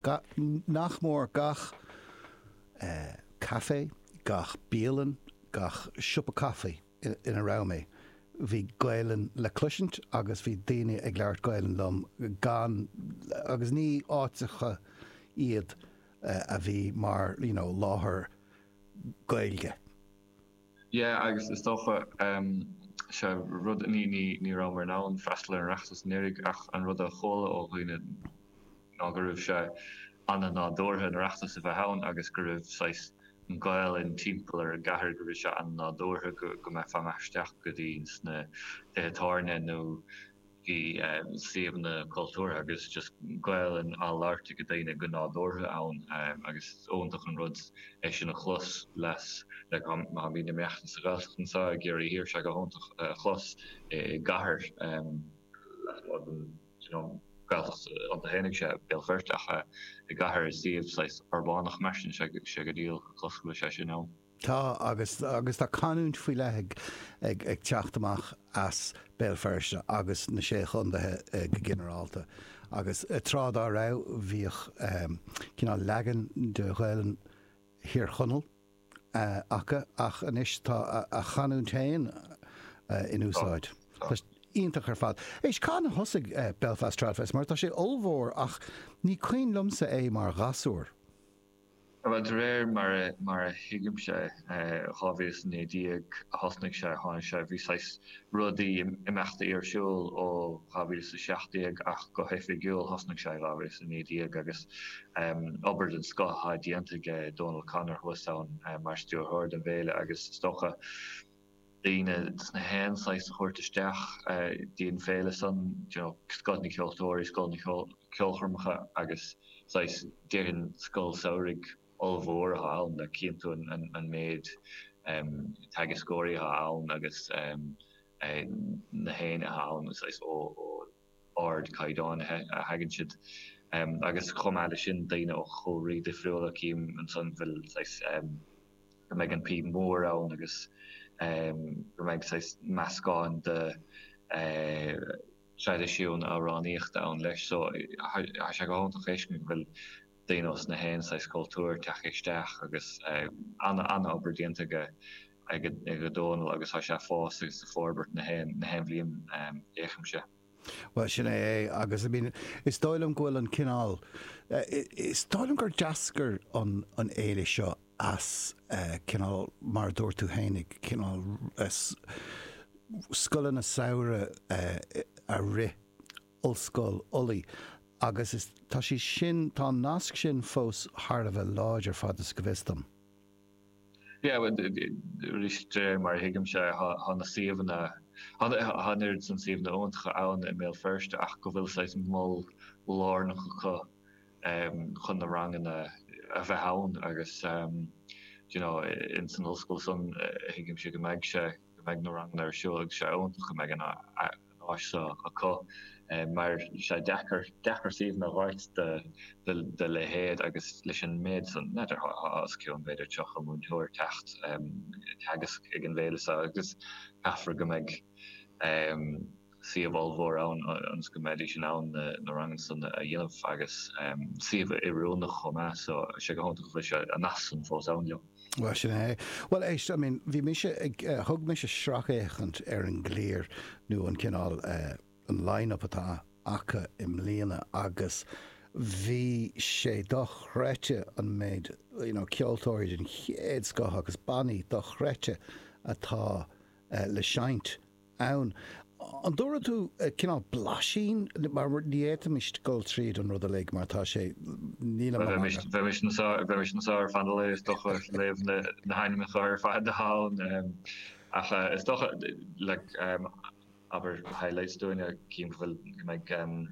ga, nach mór gach caifé, gach bialann, gach siopa caife ina raibh mé, bhí Gaelainn le cloisint agus bhí daoine ag labhairt Gaelainn liom, gan, agus ní háiteacha iad a bhí mar you know láthair Gaeilge. Yeah agus is dócha sé rud ní ní ní rabhamar in ann freastal ar an Oireachtas anuraidh ach an rud a chuala ó dhaoine ná go raibh sé an-nádúrtha an tOireachtas a bheith ann agus go raibh saghas an Gaelainn timpeall ar an gcathair go raibh sé an-nádúrtha go go mbeifeá amach isteach go dtí sna tithe tábhairne nó i suíomhanna cultúrtha agus just Gaolainn á labhairt ag daoine go nádúrtha ann agus is iontach an rud é sin a chlos. Má bhímid maite sa Ghaeltacht anseo i gCiarraí Thiar, tá sé go hiontach a chlos i gcathair lasmuigh den Ghaeltacht iontu féin, ag sé Béal Feirste ach i gcathair i suíomh saghas urbánach mar sin, tá sé go diail a chlos go bhfuil sé sin ann. Tá agus agus tá canúint faoi leith ag ag ag teacht amach as Béal Feirste agus na Sé Chondaethe go ginearálta agus tráth dá raibh bhíodh cineál leagan de Ghaolainn Thír Chonaill acu ach anois tá a gcanúint féin in úsáid. Tá sé iontach ar fad. Éist, cathain a thosaigh Belfast Tradfest mar tá sé ollmhór ach ní cuimhin liomsa é mar ghasúr. Bhuel, de réir mar a thuigimse, 2019 a thosnaigh sé, tháinig sé, bhí saghas rudaí, imeachtaí ar siúl ó 2017 ach go hoifigiúil thosnaigh sé i 2019 agus obair den scoth atá déanta aige Dónal O'Connor thuas ann mar stiúrthóir don bhféile agus is dócha, daoine 's na haon saghas a thabhairt isteach go dtí an féile san, you know, scoth na gceoltóirí, scoth na gceolchoirmeacha agus saghas, déarfainn scoil samhraidh ollmhór atá ann leis cinnte an an méid em teagascóirí atá ann agus em na héinne atá ann saghas ó ardchaighdeáin a thagann siad agus chomh maith leis sin daoine ó chúlraí difriúla, cím ansan go bhfuil saghas go mbeidh an píb mhór ann agus go mbeidh saghas meascán de traidisiúin amhránaíochta ann leis so tá sé go hiontach a fheiscint go bhfuil daoine ós na haon saghas cultúir ag teacht isteach agus ana ana obair déanta aige aige Dónall agus tá sé a' fás agus a' forbairt na haon na haon bhliain, déarfainnse. Bhuel sin é é agus I mean is dóigh liom go bhfuil an cineál is dóigh liom gur d'eascair an an fhéile seo as cineál mar a dúirt tú fhéinig cineál scoileanna samhraidh a rith Ollscoil Ulaidh agus is tá sé sin tá an nasc sin fós thar a bheith láidir fad is go bhfios dom. Yeah well arís fé mar a thuigimse thá na suíomhanna thá an oiread san suíomhanna iontacha ann i mBéal Feirste ach go bhfuil saghas mol lárnach acu um, chun na ranganna a bheith ann agus um, you know, in san ollscoil san uh, thuigimse go mbeidh sé go mbeidh na ranganna ar siúl agus sé iontach go mbeidh an áis seo acu mar sé deacair deacair suíomhanna a dh'fháilt dá leithéid agus leis an méid san n'fheadar os cionn b'fhéidir tríocha múinteoir ag teacht ag teagasc ag an bhféile seo agus caithfear go mbeidh suíomh ollmhór ann ionas go mbeidís in ann na ranganna san a dhéanamh agus suíomh oiriúnach chomh maith so sé go hiontach go bhfuil sé an nasc san fós ann leo. Bhuel, sin é. Bhuel, éist, I mean, bhí mise ag, eh, thug mise sracfhéachaint ar an gclár nó an cineál eh, an line-up atá acu i mbliana agus bhí sé dochreidte an méid you know, ceoltóirí den chéad scoth agus bannaí dochreidte atá eh, le seinnt ann. An dtabharfaidh tú cineál blaisín mar ní fhéadfaimis dul tríd an rud uilig mar tá sé. níl an rang. Bheimis anseo ar feadh an lae is dócha ag léamh na hainmneacha ar fad a fhágann ach is dócha like abair highlights dúinn a chím go bhfuil go mbeidh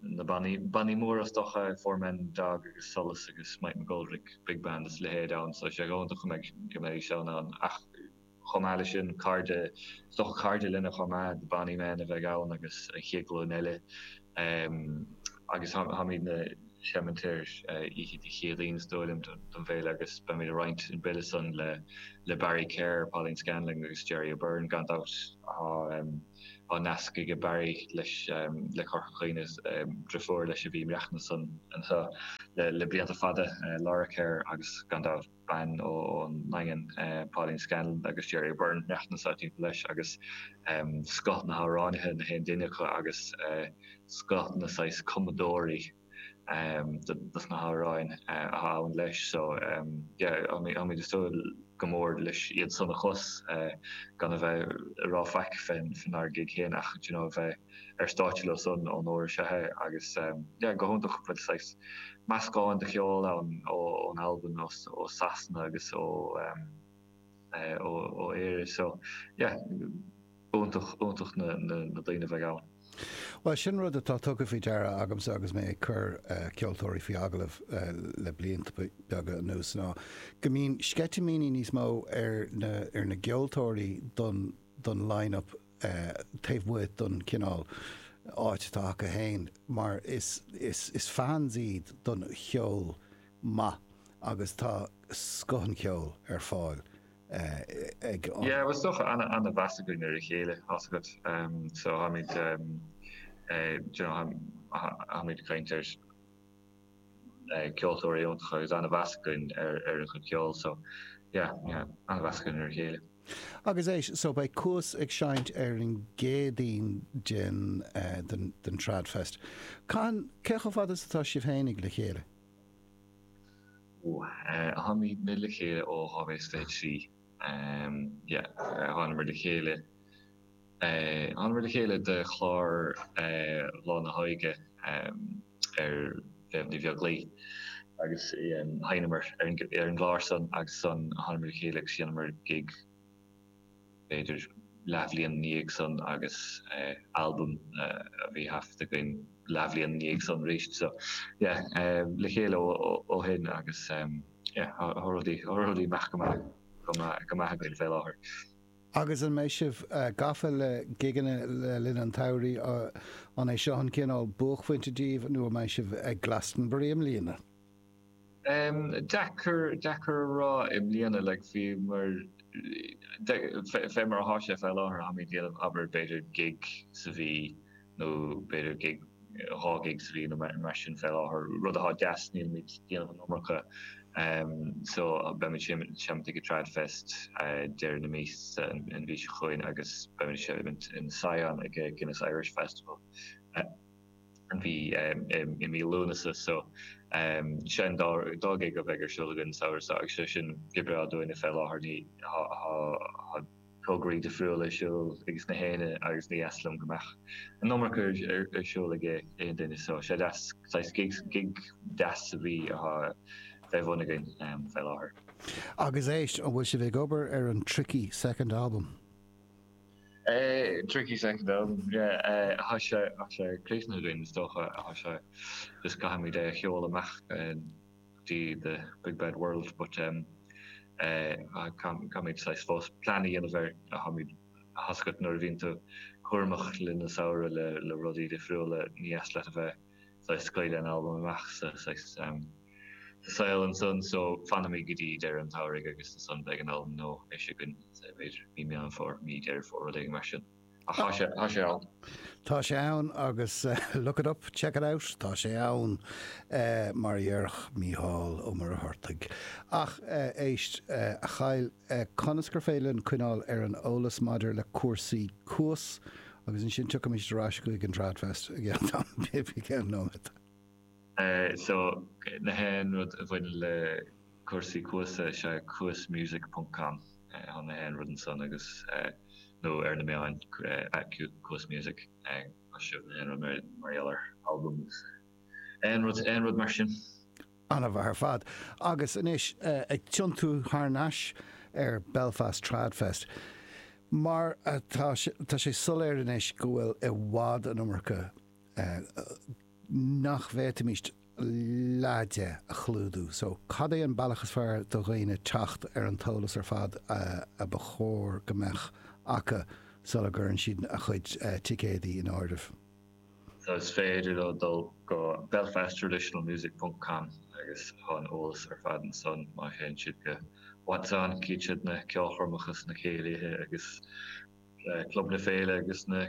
na bannaí bannaí móra is dócha Four Men and a Dog agus Solas agus Mike McGoldrick big band is leithéid ann so sé go hiontach go mbeidh go mbeidh siad san ann ach Chomh maith leis sin, cairde, is dócha cairde linne chomh maith, bannaí meáin a bheidh ann agus an chéad ghlúin eile agus táimidne ag seimint ar oíche Dé Céadaoin is dóigh liom don bhféile agus beimid ag roinnt an bille san le le Barry Kerr, Pauline Scanlon agus Gerry O'Beirne gan dabht. Tá nasc aige Barry leis le Corca Dhuibhne, driofúr leis a bhí ag maireachtaint anseo le le blianta fada, Laura Kerr agus gan dabht. bean ón nDaingean, Pauline Scanlon, agus Gerry O'Beirne ag maireachtaint san áit leis, agus scoth na hamhránaithe, na haon duine acu, agus scoth na saghas cumadóirí dos na hamhráin atá ann leis. So, yeah, táimid ag súil go mór leis iad san a chlos, gan a bheith ag rá faic fén ár gig féin ach, d'you know, a bheith. ar stáitse leo san onóir is ea é agus sé go hiontach go bhfuil saghas meascán de cheol ann ón Albain, ó Sasana agus ó ó Éire so yeah iontach iontach na na daoine a bheidh ann. Bhuel sin rud atá tugtha faoi deara agamsa agus mé ag cur ceoltóirí faoi agallamh le blianta beaga anuas ná go mbíonn sceitimíní níos mó ar na ar na gceoltóirí don don line-up taobh amuigh den chineál áit atá acu féin mar is fans iad den gceol maith agus tá scoth an cheoil ar fáil ag an. Yeah, bhuel is dócha ana-mheas againn ar a chéile tá a fhios agat so tháimid, you know, tháimid ag caint ar. ceoltóirí iontacha agus ana-mheas againn ar a gcuid ceoil so yeah yeah ana-mheas againn ar a chéile. Agus é so beidh Cuas ag seinnt ar an gCéadaoin den den Tradfest. Cathain cé chomh fada is atá sibh féinig le chéile? Ooh tháimid le chéile ó 2023 yeah thánamar le chéile thánamar le chéile do chlár Cumasc na hÓige ar Mhéabh Ní Bheaglaoich agus sheinneamar ar an gclár san agus san thánamar le chéile agus dheineamar gig b'fhéidir leathbhliain ina dhiaidh san agus albam a bhí taifeadta againn leathbhliain ina dhiaidh san arís so yeah le chéile ó shin agus yeah tá rudaí amach go maith againn fé láthair. Agus an mbeidh sibh gafa le gigeanna le linn an tsamhraidh? An é seo an cineál buaicphointe díbh nó an mbeidh sibh ag Glastonbury i mbliana? Deacair deacair a rá. I mbliana like fé mar fé mar atá sé fé láthair táimid ag déanamh abair b'fhéidir gig sa mhí, nó b'fhéidir gig, dhá ghig sa mhí nó mar sin fé láthair, rud athá deas, nílimid déanamh an iomarca so beimid seimint ag an Trad Fest deireadh na míosa an mhí seo chugainn agus beimid seimint in Sion ag Guinness Irish Festival an mhí i mí Lúnasa so sin dá ghig a bheidh ar siúl againn an samhradh so agus tá san go breá dúinne fé láthair, ní, athá, athá. tograí difriúla ar siúl aiges gach éinne agus níor dheas liom go mbeadh an iomarca ar siúl ag aon duine so tá sé deas, saghas gig, gig deas a bheith idir lámha againn fé láthair. Agus éist, an bhfuil sibh ag obair ar an Tricky Second Album? Tricky Second Album, yeah, tá sé críochnaithe againn is dócha, tá sé, just caithfimid é a sheoladh amach. go dtí the big bad world but um ach caithfimid saghas fós plean a dhéanamh ar, tá a fhios agat, nuair a bhíonn tú cúramach le linn an tsamhraidh le le rudaí difriúla níor dheas leat a bheith saghas scaoileadh an albam amach sa saghas um sa saol ansan so fanfaimid go dtí deireadh an tsamhraidh agus ansan beidh an albam nua ar siúl againn b'fhéidir mí Meán Fómhair mí Dheireadh Fómhair rud éigin mar sin. ach tá sé, tá sé ann. Tá sé ann agus look it up, check it out, tá sé ann, mar a dhéarfadh Mícheál Ó Muircheartaigh. Ach éist, a Kyle, conas gur féidir linn coinneáil ar an eolas maidir le cúrsaí Cuas agus ansin tiocfaimid ar ais chuig an Tradfest i gceann tamaill bhig, i gceann nóiméad? So na haon rud a bhaineann le cúrsaí Cuas is ea cuasmusic ponc com chun na haon rud ansan agus nó ar na meáin at cuasmusic mar seo na haon rud mar mar gheall ar albam is aon rud aon rud mar sin. An-mhaith ar fad. Agus anois ag tiontú thar nais ar Belfast Trad Fest. Mar tá sé soiléir anois go bhfuil i bhfad an iomarca nach bhféadfaimis leath de a chlúdú. So, cad é an bealach is fearr do dhaoine teacht ar an t-eolas ar fad a ba chóir go mbeadh acu sula gcuireann siad a chuid ticéadaí in áireamh? So, is féidir leo dul go belfasttraditionalmusic.com agus tá an eolas ar fad ansan má théann siad go What's On, cífidh siad na ceolchoirmeacha is na céilithe agus. Club na Féile agus na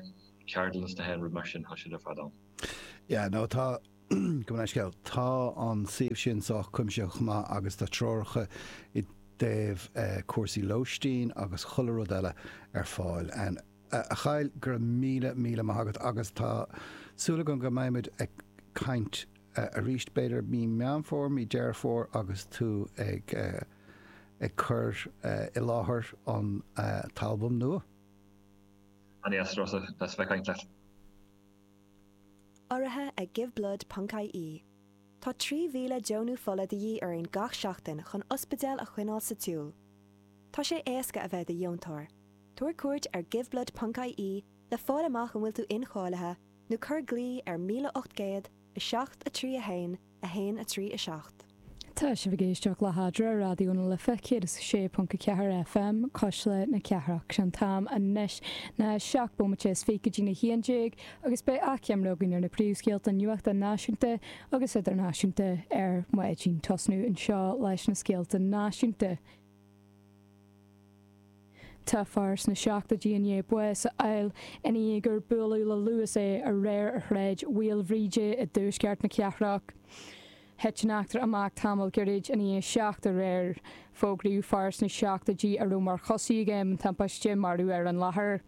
ceardlanna is na haon rud mar sin tá siad ar fad ann. Yeah, no, tá, gabh mo leithscéal, tá an suíomh sin sách cuimsitheach maith agus tá treoracha i dtaobh cúrsaí lóistín agus chuile rud eile ar fáil ann. A Kyle, go raibh míle, míle maith agat agus tá súil agam go mbeimid ag caint arís b'fhéidir mí Meán Fómhair, mí Deireadh Fómhair agus tú ag. ag cur i láthair an t-albam nua. An-deas a bheith ag caint leat. Urraithe ag Give Blood ponc-IE Tá 3,000 deonú fola de dhíth orainn gach seachtain chun ospidéil a choinneáil sa tsiúl. Tá sé éasca a bheith i do dheontóir. Tabhair cuairt ar Give Blood ponc-IE le fáil amach an bhfuil tú incháilithe nó cuir glao ar 1800 7 3 1 1, 3, 7. Tá sibh ag éisteacht le hAdhradh, Raidió na Life 106.4 FM, Cuisle na Cathrach. Sé'n t-am anois, na seacht bómaite is fiche go dtí na h-aon déag agus beidh achoimre againn ar na príomhscéalta nuachta náisiúnta agus idirnáisiúnta ar maidin. Tosnú anseo leis na scéalta náisiúnta. Tá fear sna seachtoidí i ndiaidh bás a fháil ina dhiaidh gur buaileadh le Luas é aréir ar Shráid Mhaoilbhríde i dtuaisceart na cathrach. Thit an eachtra amach tamall gairid ina dhiaidh seacht aréir. Fógraíodh fear sna seachtoidí a raibh mar choisí ag am na timpiste marbh ar an láthair.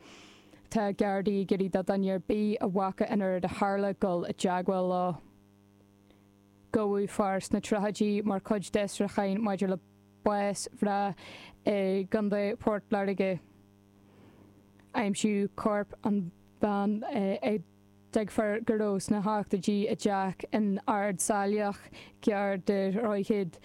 Tá Gardaí ag iarraidh do dhuine ar bith a bhfaca an oiread a tharla dul i dteagmháil leo. gabhadh fear sna tríochaidí mar chuid d'fhiosrúcháin maidir le bás mhná i gContae Phort Láirge. Aimsíodh corp an bhean a dtuigtear go raibh sna hochtóidí i dteach in Ard Saileach, gar do Dhroichead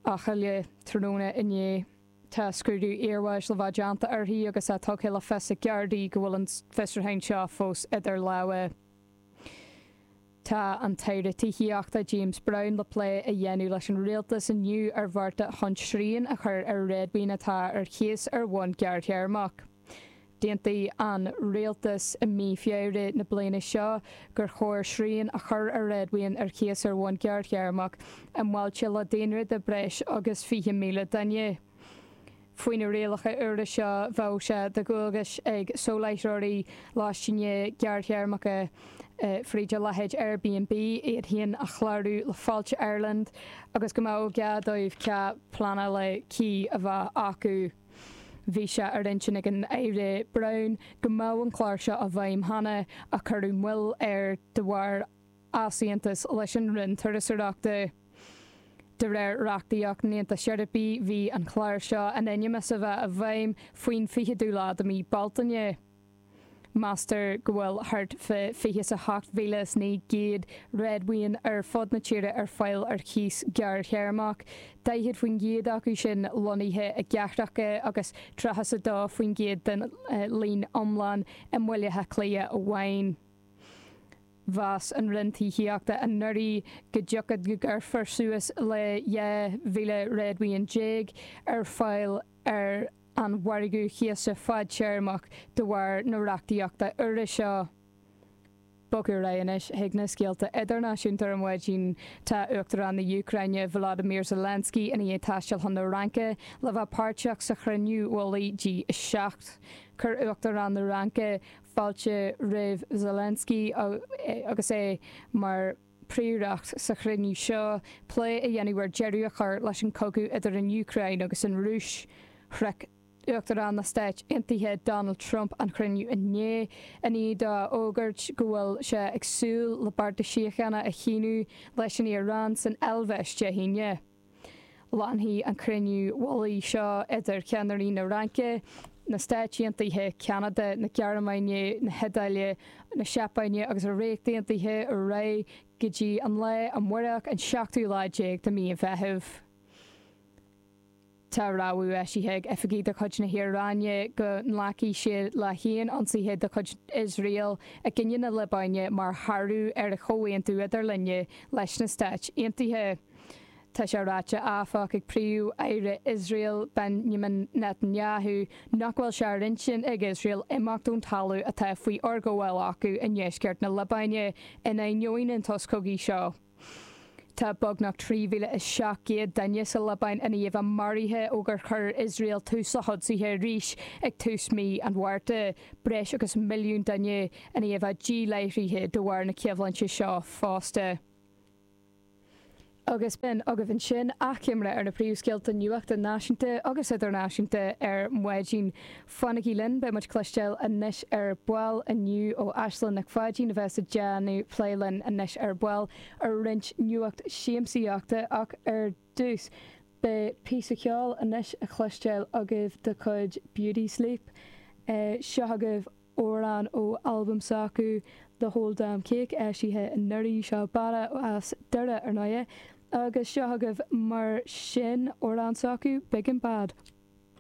Eochaille, tráthnóna inné. Tá scrúdú iarbháis le bheith déanta uirthi agus tá tugtha le fios ag Gardaí go bhfuil an fiosrúchán seo fós idir lámha. Tá an tAire Tithíochta James Browne le plé a dhéanamh leis an Rialtas inniu ar bhearta chun srian a chur ar réadmhaoin atá ar cíos ar bhonn gearrthéarmach. D'aontaigh an Rialtas i mí Feabhra na bliana seo gur chóir srian a chur ar réadmhaoin ar cíos ar bhonn gearrthéarmach i mbailte le daonra de breis agus 20,000 duine. Faoi na rialacha úra seo bheadh sé de dhualgas ag soláthróirí lóistín gearrthéarmacha, fríd a leithéid Airbnb, iad féin a chlárú le Fáilte Ireland agus go mbeadh gá dóibh cead pleanála cuí a bheith acu. Bhí sé ar intinn ag an Aire Browne go mbeadh an clár seo i bhfeidhm cheana ach cuireadh moill air de bharr easaontas leis an Roinn Turasóireachta. De réir reachtaíocht an Aontais Eorpaigh, bhí an Clár seo in ainm is a bheith i bhfeidhm faoin 20ú lá de mhí Bealtaine. Meastar go bhfuil thart fá 28,900 réadmhaoin ar fud na tíre ar fáil ar chíos gearrthéarmach, 40% acu sin lonnaithe i gcathracha agus 32% den líon iomlán i mBaile Átha Cliath amháin. Mheas an Roinn Tithíochta anuraidh go dtiocfadh go gcuirfear suas le 2,000 réadmhaoin déag ar fáil ar an mhargadh cíosa fadtéarmach de bharr na reachtaíochta úire seo. Bogadh ar aghaidh anois chuig na scéalta idirnáisiúnta ar maidin. Tá Uachtarán na Úcráine, Volodymyr Zelensky, i ndiaidh taisteal chun na Fhraince le bheith páirteach sa chruinniú mhullaigh G7. Chuir Uachtarán na Fhraince, fáilte roimh Zelensky agus é mar príoracht sa chruinniú seo plé a dhéanamh ar deireadh a chur leis an cogadh idir an Úcráin agus an Rúis. Shroich Uachtarán na Stáit Aontaithe Donald Trump an chruinniú inné i ndiaidh dó a fhógairt go bhfuil sé ag súil le bearta síochána a shíniú leis an Iaráin san Eilvéis Dé hAoine. Leanfaidh an cruinniú mullaigh seo idir ceannairí na Fraince, na Stáit Aontaithe, Cheanada, na Gearmáine, na hIodáile, na Seapáine agus an Ríocht Aontaithe ar aghaidh go dtí an lá amáireach an seachtú lá déag de mí an Mheithimh. Tá rabhadh eisithe ag oifigigh de chuid na hIaráine go nglacfaidh siad le haon ionsaithe de chuid Iosrael i gcoinne na Liobáine mar shárú ar an chomhaontú idirlinne leis na Stáit Aontaithe. Tá sé ráite, áfach, ag Príomh-Aire Iosrael Benjamin Netanyahu nach bhfuil sé ar intinn ag Iosrael imeacht ón talamh atá faoi fhorghabháil acu i ndeisceart na Liobáine in ainneoin an tsos cogaidh seo. Tá beagnach 3,700 duine sa Liobáin i ndiaidh a maraithe ó gur chuir Iosrael tús le hionsaithe arís ag tús mhí an Mhárta, breis agus milliún duine i ndiaidh a ndíláithrithe de bharr na coimhlinte seo fosta. agus b'in agaibh ansin achoimre ar na príomhscéalta nuachta náisiúnta agus idirnáisiúnta ar maidin. Fanaigí linn, beidh muid ag cloisteáil anois ar ball inniu ó Aislinn Nic Pháidín a bheas ag déanamh plé linn anois ar ball ar roinnt nuacht siamsaíochta ach ar dtús, beidh píosa ceoil anois a chloisteáil agaibh de chuid Beauty Sleep. Seo agaibh amhrán ó albam s'acu The Whole Damn Cake, eisithe anuraidh. Seo banna as Doire, ar ndóighe, agus seo agaibh mar sin amhrán s'acu, Big and Bad.